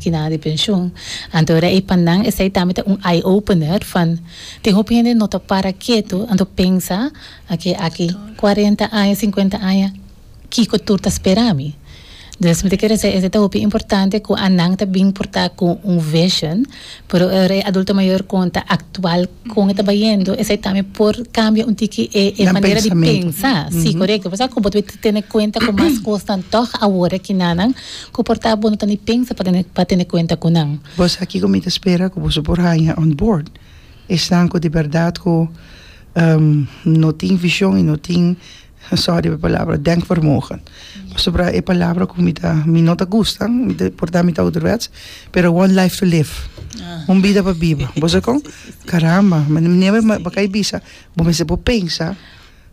Kina di penshon. Anto era ei pa nan esei tambe ta un eye opener van tin hopi hende no ta para keto anto pensa oke aki cuarenta aña cincuenta aña kiko tur ta spera mi. Dus mi ta kere esei esei ta hopi importante cu a nan ta bin porta cu un vision pero ora e adulto mayor con ta actual con e ta bayendo esei tambe por cambia un tiki e e manera di pensa si corecto pasobra cu bo ta bin tene cuenta cu mas cosnan tog awor e kinanan Ku por ta bo no ta ni pensa pa tene pa tene kuenta ku nan. Bos a kiko mi ta spera ku boso por haña on board? Esnan ku di bèrdat ku no tin vishon i no tin, sòri pa e palabra, denkvermogen. Pasobra e palabra ku mi ta mi no ta gusta, mi ta por ta mi ta ouderwets, pero one life to live, un bida pa biba. Bo sa kon? Karamba, manera mi bai bisa bo mester por pensa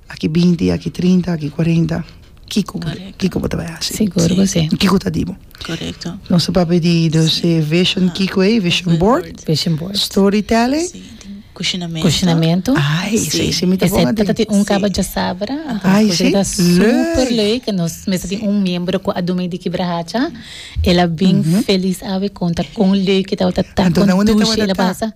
Aki binti, aki trinta, aki kuarenta, kiko bo ta, kiko bo ta bai hasi? Sigur ku si. Kiko ta di bo? Korekto. Nos ta papia di dos e vision kiko ei, vision board, Vision board. story telling, Si, tin kushinamentu. Kushinamentu. ai esei Si. simi ta bon Esei adentro. ta tin un kaba djasabra, anta Ai, un kusa si. ku ta super Lei. lei, ke nos mester tin un miembro ku a durmi di kibra hacha, el a bin felis awe konta kon lei ku tabata ta Anto nan unde kontushi tabata el a ta? pasa.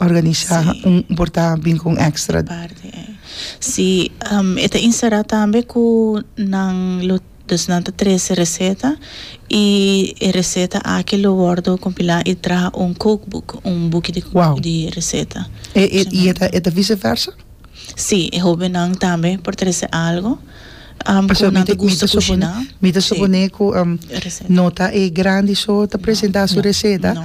Organisá un portá bin ku un ekstra. Parti ei. Si, e ta inserá tambe ku nan lo, dus nan ta trese reseta i e reseta aki lo wòrdu kompilá i traha un cookbook, un buki di Wow. di reseta. E e i e ta e ta vise versa? Si, e hóbennan tambe por trese algu ku Pasha mi nan ta ta mi ta gusta suponé kushiná. mi ta Si. suponé ku Reseta. no ta e grandi so ta presentá su reseta. No.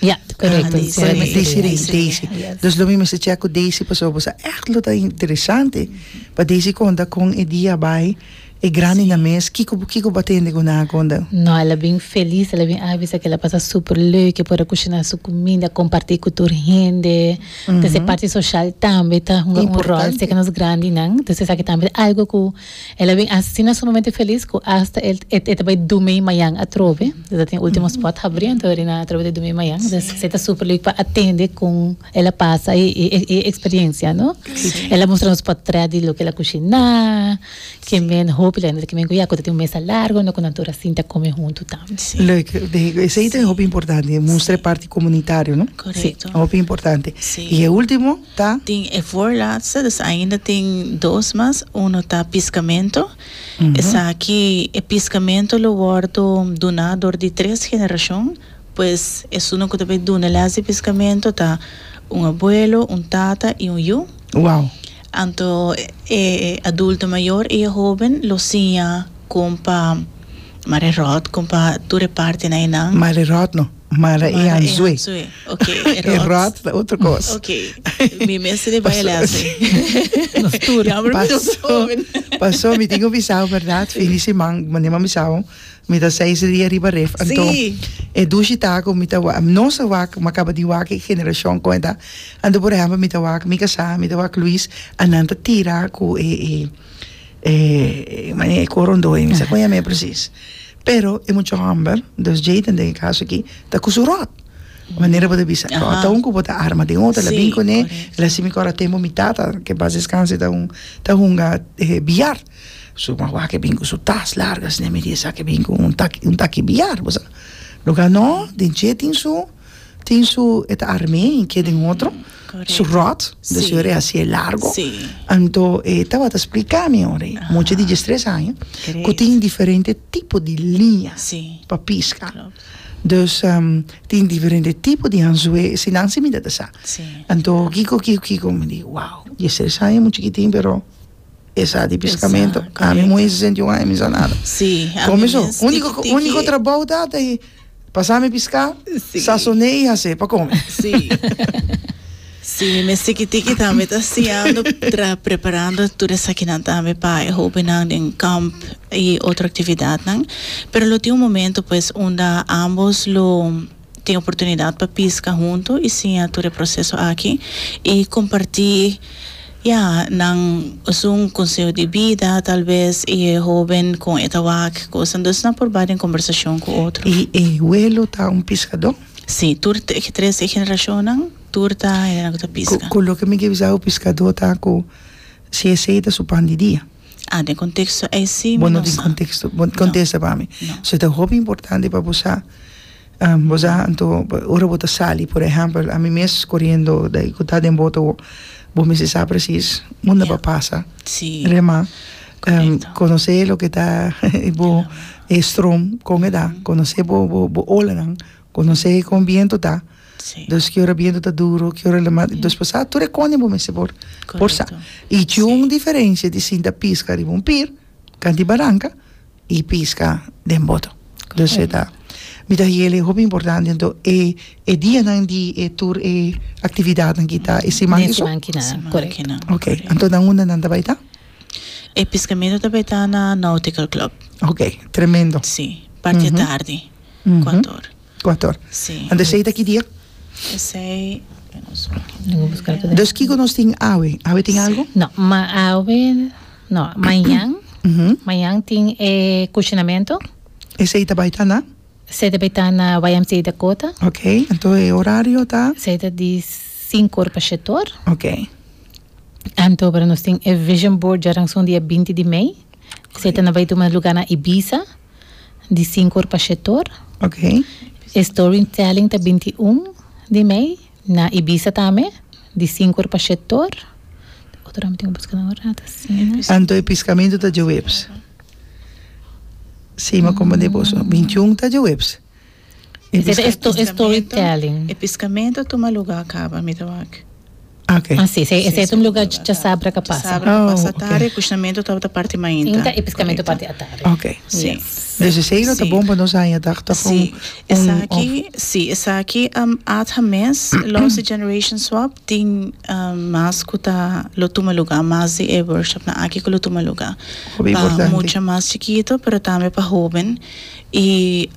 Ya, korekto. Di Sheree. Korekto. Di Sheree i Daisy. Yes. Dus lo mi mester chek ku Daisy pasobra bo sa ègt lo ta interesante pa Daisy konta kon e dia a bai, e grandi nan mes, kiko bo kiko bo a tende ku nan a konta? No, el a bin felis, el a bin avisa ku el a pasa super leuk, e por a kushiná su kuminda, a kompartí ku tur hende. Dus e parti soshal tambe ta hunga un ròl Importante. serka nos grandinan. Dus esaki tambe ta algu ku. El a bin asina sumamente felis cu hasta el e ta bay dumey mayan atrobe. E ta tin ultimo spot habri anto eri na atrobe di dumey mayan. Des esey ta super leuk pa atende con el a pasa e e experiencia, no? El a mustra nos potret di loke el a cushina, ke men hopi laga nan ta kimen cu ya cu ta tin un mesa largo anto cu nan tur a sinta come hunto tambe. Leuk, leuk. Esey ta hopi importante, mustra e parti comunitario, no? Correcto. Hopi importante. Y e ultimo? ta. Tin e voorlaatstedes ainda tin dos mas uno ta piscamento esaki e piscamento lo wordo duna door di tres generacion pues esunan cu ta bay duna les di piscamento ta un abuelo un tata y un yu wow anto e adulto mayor y e hoben lo siña con pa mare rot con pa tur e partenan einan mare rot no. Mara e hanzue. E ròt ta otro kos. Nos tur. Pasó mi tin ku bisao bèrdat fin di siman mane'e mi bisao mi ta seis dia riba ref anto e dushi taku mi ta wak nos a wak mi a kaba di wak e generashon kon e ta anto por ehèmpel mi ta wak mi kasá mi ta wak Luis anan ta tira ku e e mane e korondoi mi sa kon yam'e presis. Pero e mucha homber, dus Jayden den e kaso aki, ta ku su ròt. Manera bo ta bisa, ròt ta un ku bo ta arma den otro, el a bini kuné, el a hasi mi kòr a tempu mi tata, ke en pas deskanse ta un, ta hunga biar, su mawaak a bini ku su tas largu asina, mi di esaki a bini ku un taki, un taki biar, bo sa. Lo ganó, den dje tin su. tin su e ta armé i ke den otro su ròt do su e hasi e largo anto e tabata spliká mi ora ei mucha di djes tres aña ku tin diferente tipo di liña pa piska dus tin diferente tipo di anzué si nan si mi ta ta sa anto kiko kiko kiko mi di wow djes tres aña e muchikitin pero Esa di piscamento a mi muhe sesenta y un aña mi sa nada con mi so unico unico trabou ta ta y pasa mi pisca sasone y hase pa come si mi mes tiki tiki tambe ta siando tra preparando tur esakinan tambe pa e hobennan den camp y otro actividadnan pero lo tin un momento pues unda ambos lo. tin oportunidat pa piska huntu y siña tur e proceso aki y comparti ya nan esun conseho di bida tal vez y e hoben con e ta wak cu cosa entonces nan por bay den conversacion cu otro. Y e huelo ta un piscador? Si, tur te e tres e generacionnan tur ta hende nan cu ta pisca. Cu loke mi ke bisa awo piscador ta cu si esey ta su pan di dia. Ah, den konteksto ei si mi no sa. Bo no tin konteksto, bo kontesta pa mi. No. So e ta hopi importante pa bo sa. Bo sa anto ora bo ta sali por ehèmpel ami mes koriendo dai ku ta den boto bo mester sa presis unda bo a pasa. Si. Remá. Korekto. Konosé loke ta bo e strom kon e ta, konosé bo bo bo olanan Conoce e con biento ta sí. dos que ora biento ta duro que ora lema sí. dos pasado tur e cone bo mester por por sa y sí. un diferencia di sinta pisca riba un pir canti barranca y pisca den boto dus e ta mi ta hiele hopi importante ento e e dia nan di e tur e actividad nan kita e siman den siman kina correcto kina ok anto nan unda nan ta bai ta e piscamento ta bai ta na nautical club ok tremendo sí parte mm -hmm. tardi Kuator. Kuator. Si. Anto esei ta ki dia? Esei, veros hopi. Duna buska algu den. Dus kiko nos tin awe? Awe tin algu? No, ma awe no. Mañan, mañan tin e kushinamentu. Esei ta bai ta na? Esei ta bai ta na YMCA Dakota. Ok, anto e orario ta? Esei ta di sinku or pa sheti or. Ok. Anto aver nos tin e Vision Board djaransu dia binti di mei. Esei ta na bai tuma luganan Ibiza. di sinku or pa shete or. E storytelling ta binti un di mei na Ibiza tambe di sinku or pa shete or. Otro dame tin un buskada un rato asina. Anto e piskamentu ta djoweps. Sima como de boso. Bintiun ta djoweps. E piscamento a tuma lugar caba mi ta wak. Así es e setum lugar dja sabra ca pasa. Atari e cushamentu tabata parti mainta. Inta e piscamento parti atari. Ok. Si. Desde esey lo ta bon pa nos haña dag dag un. Si. Esaki, si. Esaki atha mes los di generation swap tin mas cu ta lo tuma lugar mas di e workshopnan aki cu lo tuma lugar pa mucha mas chikito pero tambe pa hoben. I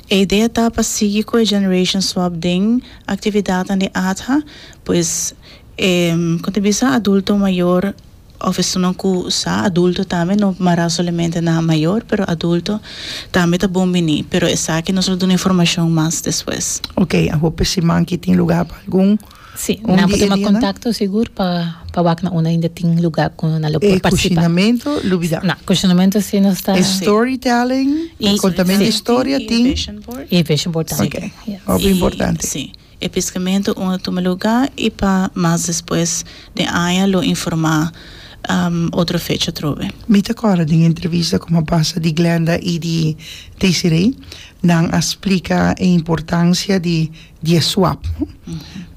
e idea ta pa sigui ku e generation swap den aktividatnan di adha, pues e kon ta bisa adulto mayor òf esunnan ku sa adulto tambe no mará solamente na mayor pero adulto tambe ta bon bini pero esaki nos lo duna informashon mas despues. Oke a hopi siman ki tin lugá pa algun. Sí, nan por tuma kontakto sigur pa pa wak na unda ainda tin lugá ku nan lo por partisipá. E kushinamentu lubidá. Na, kushinamentu sí nos ta. E storytelling, e kontamentu historia tin. I e vision board tambe tin. Ok, hopi importante. Sí, e piskamentu un a tuma lugá i pa mas despues den aña lo informá otro fecha atrobe. Mi ta kòrda den e entrevista ku a pasa di Glenda i di Desiree, nan a splika e importansia di. di e swap no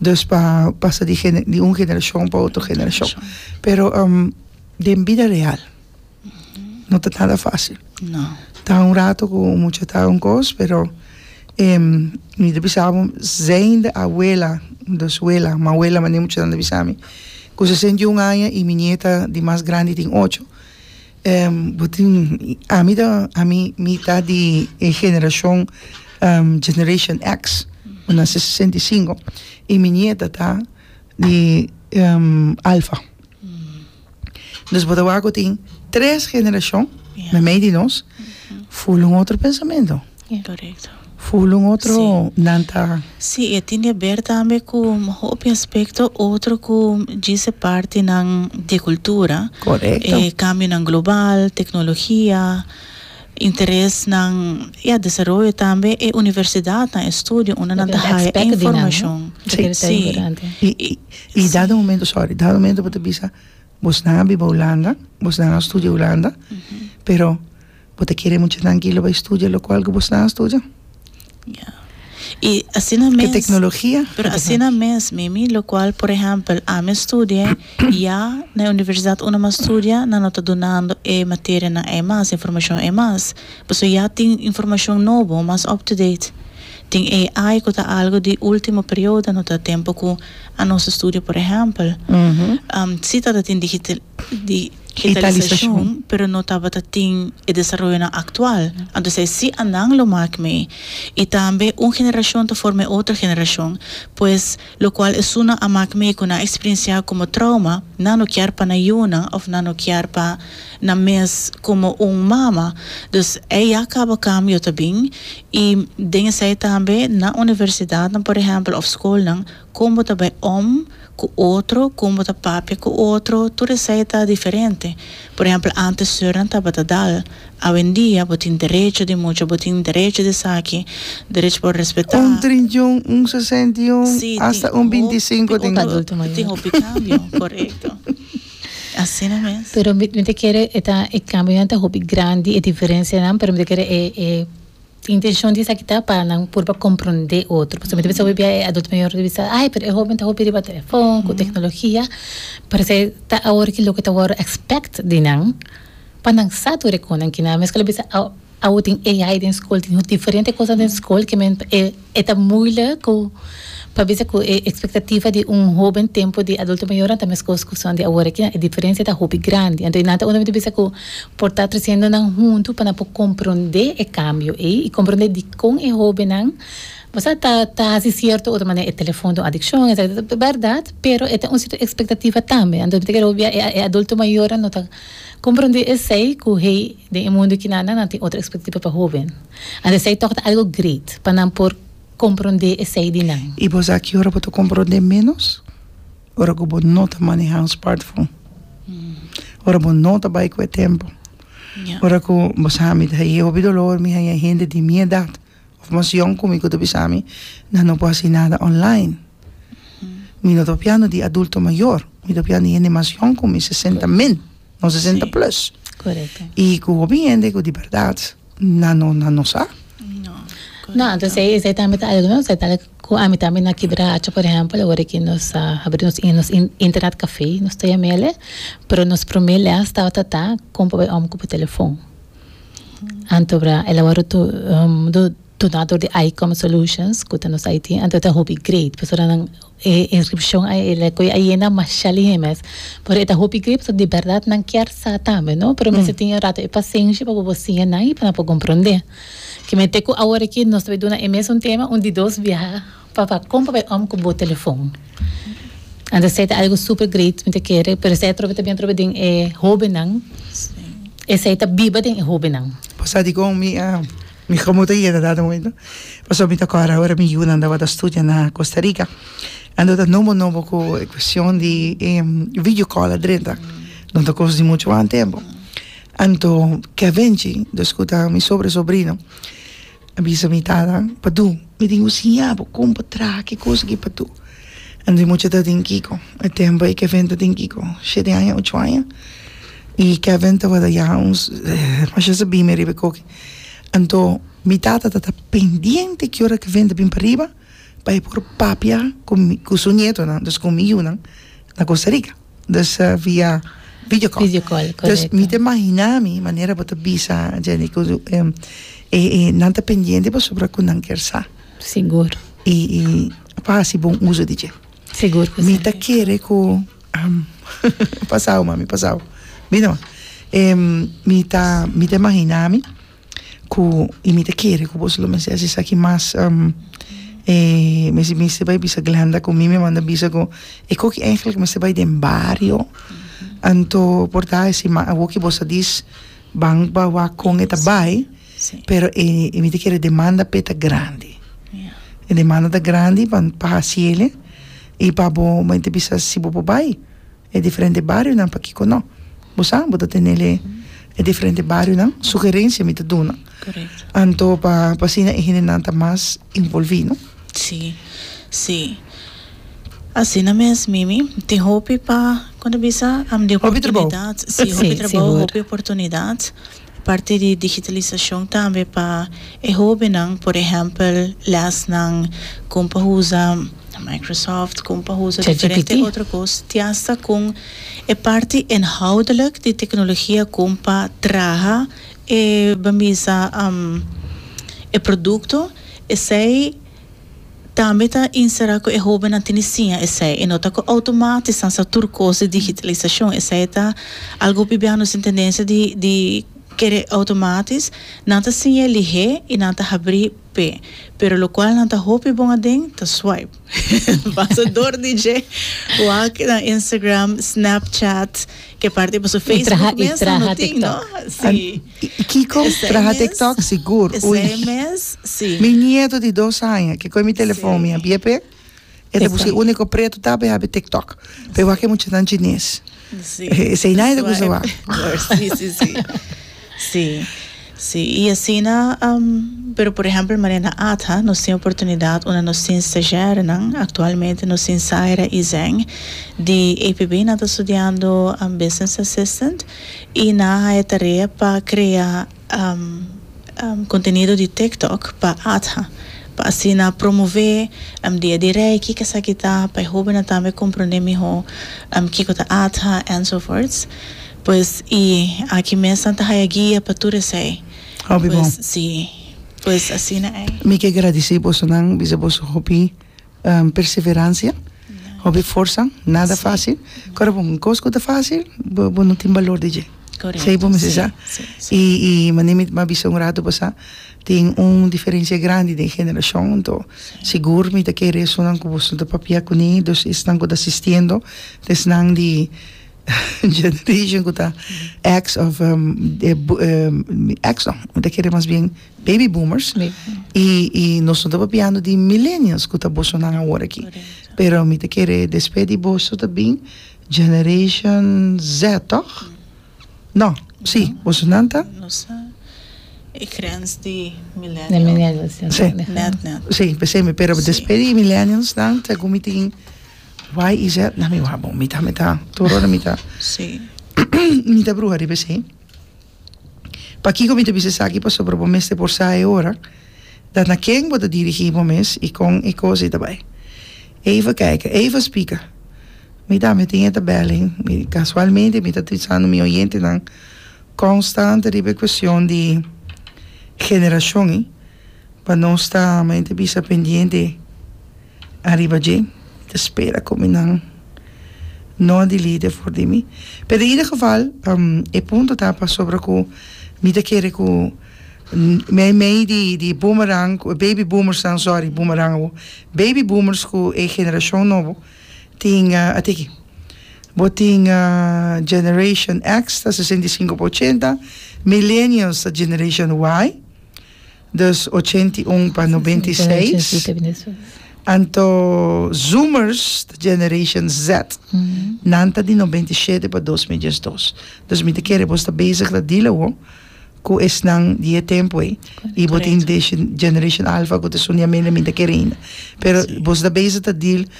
dus pa pasa di gene di un generashon pa otro generashon Generashon. pero um den bida real no ta nada fasil No. ta un rato ku mucha ta un kos pero em mi ta bisa bo zende awela dus wela mawela mane muchanan ta bisa mi ku sesenta i un aña i mi nieta di mas grandi tin ocho bo tin ami ta ami mi ta di e generashon generashon eks mi nase sesenta i sinku i mi nieta ta di alfa dus bo ta wak ku tin tres generashon na mei di nos full un otro pensamentu. Full un otro nan ta. Si e tin di aber tambe ku hopi aspekto otro ku djis e partinan di kultura e kambionan global teknologia interesnan ya desaroyo tambe e universidatnan e studio unda nan ta haya e informashon si i dado momento sorry dado momento bo ta bisa bosnan a biba Hulanda bosnan a studia Hulanda pero. Bo ta kere mucha trankilo bai studia lokual ku bo sta a studia? Ya. I asina mes. Ke teknologia? Pero asina mes, Mimi, lokual por ehèmpel ami a studi'é ya na e universidat unda mi a studia nan no ta dunando e materianan ei mas, e informashon ei mas. Pasobra ya tin informashon nobo, mas up to date. Tin AI ku ta algu di ultimo periodo, no ta tempu ku anos studio por ehèmpel. Si tabata tin digita. di hitalisacion pero no tabata tin e desaroyonan actual anto esei si a nan lo mak mee y tambe un generacion ta forma e otro generacion pues locual esunnan a mak mee cu nan a experiencia como trauma nan no kier pa nan yunan of nan no kier pa nan mes como un mama dus ei ya caba cambio ta bin y den esei tambe nan universidadnan por ehempel of schoolnan kon bo ta bai om ku otro, kon bo ta papia ku otro, tur esei ta diferente. Por ehèmpel, ántes seurnan tabata dal, awendia bo tin derecho di mucha, bo tin derecho di esaki, derecho pa respetá. Un trintiun, un sesenta i un, asta un binti i sinku tin. Tin hopi kambio, korekto. Asina mes. Pero mi ta kere e ta e kambionan ta hopi grandi, e diferensianan, pero mi ta kere e E intencion di esaki ta pa nan purba compronde otro, pasobra mi ta bisa hopi bia e adulto mayor ta bisa ay pero e hoben ta hopi riba telefon cu tecnologia, pero esaki ta awor ki loke ta wordo expect di nan pa nan sa tur e cu nan kina. Mescol a bisa awo tin AI den school tin diferente cosnan den school ke men e. E ta moeilijk ku pa bisa ku e ekspektativa di un hoben tempu di adulto mayornan ta meskos ku son di awor aki, e diferensia ta hopi grandi. Anto e nan ta unda mi ta bisa ku por ta tresiendo nan huntu pa nan por komprondé e kambio ei i komprondé dikon e hobennan basta ta ta hasi sierto otro manera. E telefon ta un adikshon etcetera. Ta bèrdat, pero e ta un sierto ekspektativa tambe. Anto mi ta kere hopi bia e e adulto mayornan no ta komprondé esei ku hey den e mundu kinan nan nan tin otro ekspektativa pa hoben. And esei tok ta algo great pa nan por komprondé esei di nan. I bo sa ki ora bo ta komprondé ménos? Ora ku bo no ta manehá un spartfon. Ora bo no ta bai ku e tempu. Ora ku bo sa mi ta haña hopi dolor, mi haña hende di mi edat òf mas yòn ku mi ku ta bisa mi, nan no por hasi nada online. Mi no ta papiando di adulto mayor, mi ta papiando di hende mas yòn ku mi, sesenta min. nos sesenta plus. Correcto. Y cu hopi hende cu di verdad na no, na no sa. No, entonces ahí esai tambe ta algo, no? Esai ta algo cu ami tambe na Kibra haci, por ejemplo, awor aki nos a habri nos in- nos in- internet café, nos ta yamel'e, pero nos prome les tabata ta, con papai om cu por telefon. Anto bra, el a wor tu, Donator di Icom Solutions cu ta nos IT anto ta hopi great pasobra nan e inscripcion a el cu e a yena masha lihe mes pero e ta hopi great pasobra di berdad nan kier sa tambe no pero mester tin un rato e pasenshi pa bo por siña nan y pa nan por comprende ki mente cu awor aki nos ta bay duna e mesun tema un di dos biaha pa pa con pa bay om cu bo telefon anto esey ta algo super great mi ta kere pero esey atrobe ta bini atrobe den e hobennan esey ta biba den e hobennan. Pasadico mi a Mi komo ta yega dado momento pasobra mi ta kòrda ora mi yunan tabata studia na Costa Rica anto ta nobo nobo ku e kuestion di e video call adrenta no ta kos di muchu mas tempu anto ke a benschi dos ku ta mi sobra sobrino a bisa mi tata padu mi tin ku siña bo kon pa traha ke kos aki padu anto e mucha ta tin kiko e tempo ei Kevin ta tin kiko shete aña ocho aña i Kevin tabata ya un masha sabime riba e koki. Anto mi tata ta ta pendiente ki ora ki vent a bin pariba pa e por papia ku su nietonan dus ku mi yunan na Costa Rica dus via video call video call dus mi ta imagina mi manera bo ta bisa Jenny ku e nan ta pendiente pasobra ku nan ker sa sigur i pa hasi bon uso di dje sigur ku si mi ta kere ku Am. Pasau mami pasau. Mira man e mi ta mi ta imagina mi cu y mi ta kere cu boso lo mester haci esaki mas am e mi si mester bay bisa Glenda cu mi mi a manda bisa cu e coki eigenlijk mester bay den bario anto por ta esi ma awo ki boso a dis ban ba wak con e ta bay. Pero e mi ta kere demanda p'e ta grandi. E demanda ta grandi pa pa hasiele i pa bo mi ta bisa si bo por bai e diferente barionan pakiko no. Bo sa bo ta tenele e diferente barionan sugerencia mi ta duna anto pa pa asina e hendenan ta mas envolvi no. Si si asina mes Mimi tin hopi pa kon ta bisa hopi trabou si hopi trabou hopi oportunidad. Parti di digitalisashon tambe pa e hóbennan, por ehèmpel, lèsnan kon pa usa Microsoft, kon pa usa diferente otro kos, te asta kon e parti inhoudelik di teknologia kon pa traha e bambisa e produkto, esei Tambe ta insera cu e hobennan tene siña esey, e no ta cu automatisch nan sa tur cos di digitalisacion, esey ta algo bibiano sin tendencia di di kere automatisch, nan ta siña lihe y nan ta habri pe, pero locual nan ta hopi bon aden ta swipe. Pasa dor di dje, wak na Instagram, Snapchat, ke parti pasobra Facebook mester no tin, no? Si. Y Kiko traha tiktok sigur ui. Mi nieto di dos aña ke koe mi telefon mi a biep e ta buska e unico preto taba e habi tiktok pero wak e muchanan chines esei nadie ta kusa wak. Y asina pero por ehempel manen na Adha nos tin oportunidad unda nos tin stagiarenan actualmente nos tin Zaira y Zeng di APB nan ta studiando business assistant y nan a haya tarea pa crea contenido di TikTok pa ATHA pa asina promove dia di Reiki kesaki ta pa e hobennan tambe comprende miho kico ta ATHA enzovoorts pues y aki mes nan ta haya guia pa tur esey pues si pues asina ey. Mi ke gradici bosonan bisa boso hopi Perseveransia, hopi forsa, nada fasil, kor bo un kos ku ta fasil bo no tin balor di dje, esei bo mester sa, i i manera mi a bisa un ratu pasá tin un diferensia grandi den generashon, anto sigur mi ta kere esnan ku boso ta papia kuné, dus esnan ku ta asistiendo, esnan di generashon ku ta èks òf èks no mi ta kere mas bien. Baby boomers y nos no ta papiando di millennials cu ta boso nan awor aki pero mi ta kere despe di boso ta bin generation Z toch? No si boso nan ta. Nos ta e grens di millennials net net si pesey pero despe di millennials nan ta cu mi tin Y y Z nan mi wou bo mi ta mi ta tur ora mi ta mi ta bruha riba esey. Pakiko mi ta bisa esaki? Pasobra bo mester por sa e ora dat na ken bo ta dirigí bo mes i kon e kos ei ta bai. Eva kaika, Eva spika, Mi tambe tin e tabèlnan. Kasualmente mi ta trisando mi oyentenan konstante riba e kuestion di generashon ei, pa nos ta, men ta bisa, pendiente. Ariba dje, ta spera cu mi nan no a delete for di mi. Pe den ieder geval, e punto ta pasobra cu mi ta kere cu mei mei di di boomerang, baby boomers nan, sorry, boomerang awo, baby boomers cu e generacion nobo tin, a tiki, bo tin generation X ta sesenta i sinku pa ochenta, millennials ta generation Y. Dus ochenta i un pa nobenta i seis, anto Zoomers ta Generation Z, nan ta di nobenta i shete pa dos mil diesdos. Dus mi ta kere bo sta bezig ta dila awo ku esnan di e tempu ei, i bo tin Generation Alfa ku ta suniamen, mi ta kere ainda, pero bo sta bezig ta dila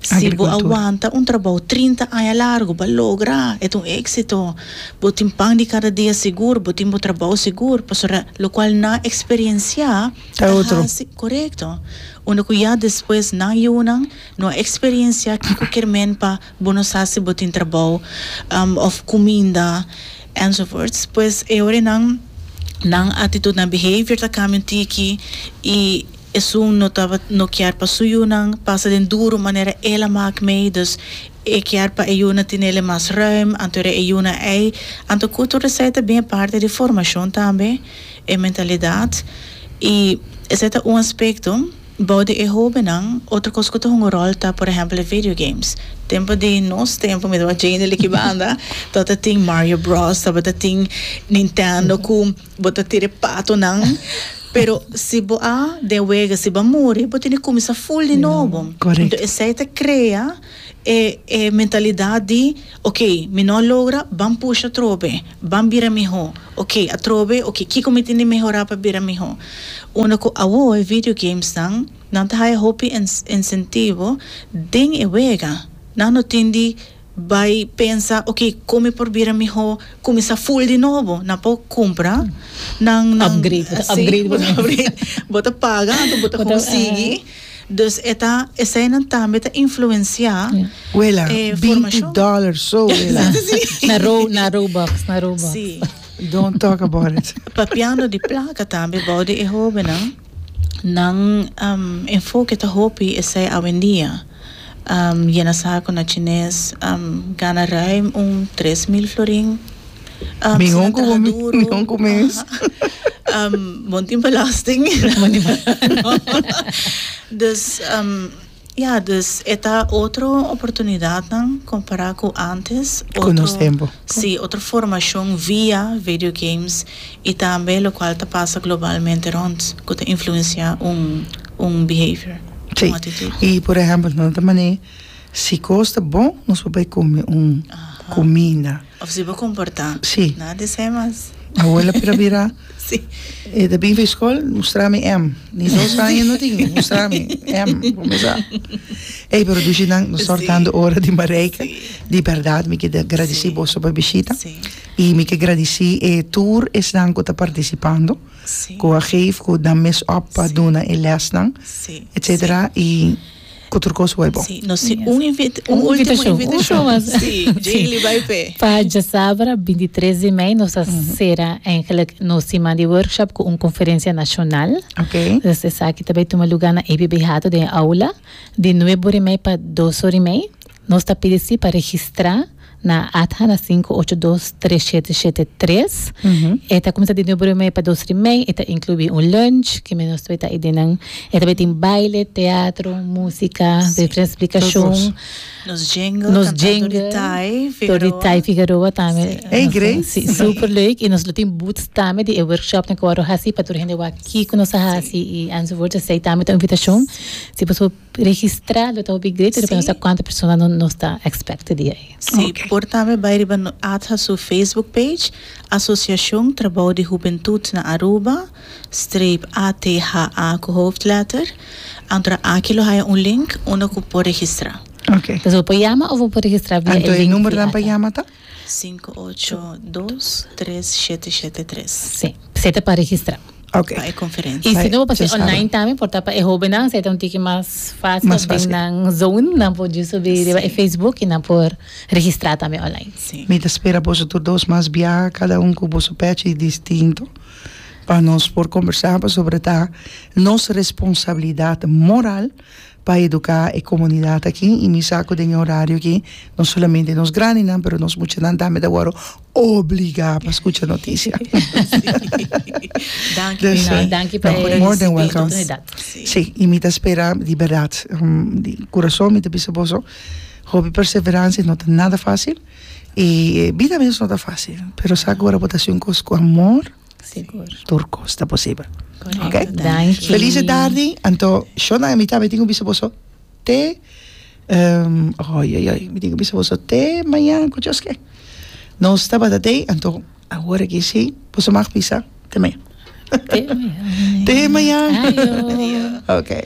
Si bo a wanta un trabou trinta aña largu, bo a logra, e ta un éksito. Bo tin pan di kada dia sigur, bo tin bo trabou sigur, pasobra lokual nan a eksperensiá ta hasi, korekto, unda ku ya despues nan yunan no a eksperensiá kiko kier men pa bo no sa si bo tin trabou òf kuminda ènzovoorts. Pues e ora nan nan atitut, nan behavior ta kambia un tiki i. Esun no taba no kier pa su yunan pasa den duru manera el a mak mei, dus e kier pa e yunan tinele mas ruim, anto era e yunan ei, anto kuto resei ta bin e parti di formashon tambe, e mentalidat, i esei ta un aspekto. Bou di e hobennan, otro kos ku ta hunga ròl ta por ehèmpel e video games. Tempu di nos tempu, mi tabata jende likibanda, tabata tin Mario Bros, tabata tin Nintendo ku. Bo ta tira e patonan, pero si bo a den wega, si bo a muri, bo tin di kuminsá ful di nobo. Nto esei ta krea e e mentalidat di ok, mi no a logra, ban pusha atrobe, ban bira mihó, ok atrobe, ok kiko mi tin di mehorá pa bira mihó. Unda ku awo e video gamesnan, nan ta haya hopi ensentivo den e wega, nan no tin di. Bai pensa ok con mi por bira miho cuminsa full di nobo nan por cumpra nan nan upgrade bo ta upgrade bo ta paga anto bo ta con sigui dus e ta esai nan tambe ta influencia wela binti dollar so wela na robux na robux si don't talk about it papiando di placa tambe bou di e hobennan nan enfoke ta hopi esai awendia. yena saku na chines, gana ruim un tres mil florin. Mi hon ku bo mi hon ku mes. Bo no tin belasting. Dus ya, dus e ta otro oportunidatnan kompara ku antes. Konosé bo. Si, otro formacion via video games y tambe locual ta pasa globalmente rond cu ta influencia un un behavior, un actitud. Si, y por ehemplo nan ta mane si cos ta bon nos por bay come un comida. Of si bo comporta. Si. Nada di esey mas. Awola pero bira. Sí. E ta bin fishkol, mustra mi em. Ni dos aña no tin, mustra mi em. Kumesa. Ey, pero dushi nan, nos tor tando Sí. ora di Marijke. Sí. Di berdad, mi ke da gradisí Sí. boso pa e bishita. Sí. I mi ke gradisí e tur esnan ku ta partisipando, Sí. ku a geef, ku nan mes op pa Sí. duna e lèsnan, Sí. etsetera. Sí. I. Otro cos wai bon. Sí, nos tin un invita, un ultimo invitacion. Sí, Jayley bai p'e. Pa djasabra bintitres di mei nos a sera eigenlijk nos siman di workshop cu un conferencia nacional. Okay. Dus esaki ta bai tuma lugar na ABB Hato den e aula di nuebe ori mei pa dos ori mei. Nos ta pidi si pa registrá na ATHA na sinku ocho dos tres shete shete tres. E ta kuminsá di nueve ora i media pa dos ora i mei. E ta inkluí un lunch ki mi nos tabata ta edi nan. E tabata tin baile, teatro, músika, diferente splikashon. Nos jingle, kantando di Thai Figueroa. Di Thai Figueroa tambe. Ey, Grace. Sí, súper leuk. I nos lo tin booths tambe di e workshopnan ku bo a wor a hasi pa tur hende wak kiko nos a hasi i enzovoorts. Esei tambe ta un invitashon. Si bo su. Registrado ta hopi great depende nos ta cuanta persona nos ta expect di ey. Si, por tambe bay riba ATHA su Facebook page, Asociacion Trabao di Hubentud na Aruba, streep ATHA cu hoofdletter, antora aki lo haya un link unda cu por registra. Oké. Bo por yama of bo por registra via e link di ATHA. Anto e numero nan pa yama ta? Sinku ocho dos tres shete shete tres. Sí. Esei ta pa registrá. Ok. Pa e konferensia. I si no bo pas'é online tambe por ta pa e hóbennan, esei ta un tiki mas fásil. Mas fásil. Den nan zone nan por djis subi riba e facebook i nan por registrá tambe online. Sí. Mi ta spera boso tur dos mas biaha, kada un ku boso pèchi distinto, pa nos por kombersá, pasobra ta nos responsabilidat moral pa educa e comunidad aki y mi sa cu den e horario aki no solamente nos grandinan pero nos muchanan tambe ta worde obliga pa scucha noticia. Danki pa e oportunidad. Si, y mi ta spera di berdad, di curason mi ta bisa boso hopi perseverancia no ta nada facil y bida mes no ta facil pero sa cu ora bo ta haci un cos cu amor Sigur. Tur kos ta posibel. Oké. Danki. Felice tardi. Anto sho na e mita mi tin ku bisa boso te oioioi mi tin ku bisa boso te mañan ku djos ke. Nos tabata te anto awor aki si boso mag bisa te mañan. Te mañan. Te mañan. Adio. Oké.